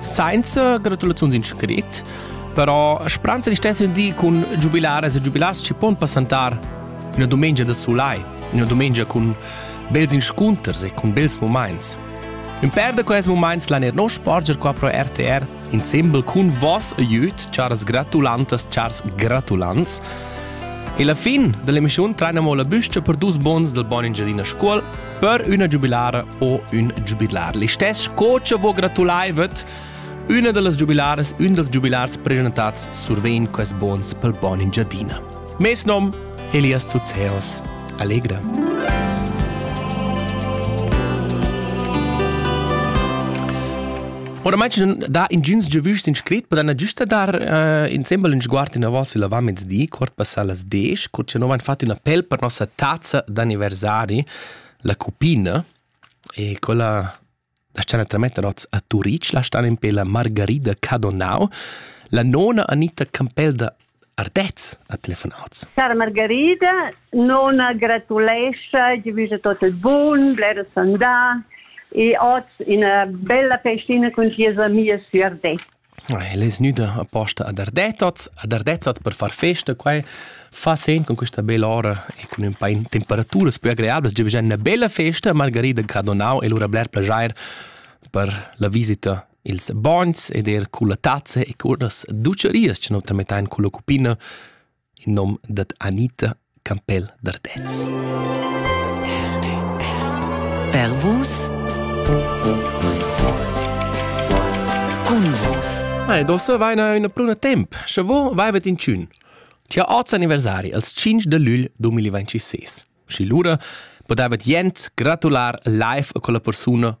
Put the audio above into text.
Sainza gratulaziuns in scrit, però spranza di stesser di cun giubilares e giubilars ci pon passantar una domenica da sulai, una domenica cun bels inscunters e cun bels moments. Un per da quels moments l'han er nos sporger qua pro RTR insembel cun vos e jüt, charas gratulantas, chars gratulants. E la fin dell'emissione trainamo la büstia per dus bons del buon Engiadina Scuol per üna giubilara o ün giubilar. Listess co cha vo gratulaivet, üna da las giubilaras, ün dals giubilars presentats survegn quest bons pel Bon Engiadina. Mes nom Elias Tuzeos. Alegre! Oramai ci da ingins giavüschs in scrit, podan giusta dar uh, insembel in sguard in avos il mezdi, cort passa las 10, cur ci non han fatto una pel per nostra tazza d'anniversari, la cupina, e quella la scena trametta rots a Turic, la stan in pe la Margarida Cadonau, la nona Anita Campel da Ardez, ha telefonat. Sara Margarida non gratulescha, gli visa tot il bun, blera sandà e oz ina bella festina cun sias amias su Ardez. El es gnüda aposta ad Ardezzoz, ad Ardezzoz per far festa, quai fa sen con questa bella ora e cun un pa in temperaturas più agreables, giovgia una bella festa, Margarida ha donau e lura bler plagier per la visita Ils bogns ed er culla tazza e curnas ducerias che nu tamettain culla cuppina in nom dad Anita Campell d'Ardez. Per vus Cun vus Ma ed ossa vaina üna pruna temp, sche vo vaivet in tschün. C'è oz anniversari als 5 de lügl 2026. Și lura podavet jent gratular live con la persuna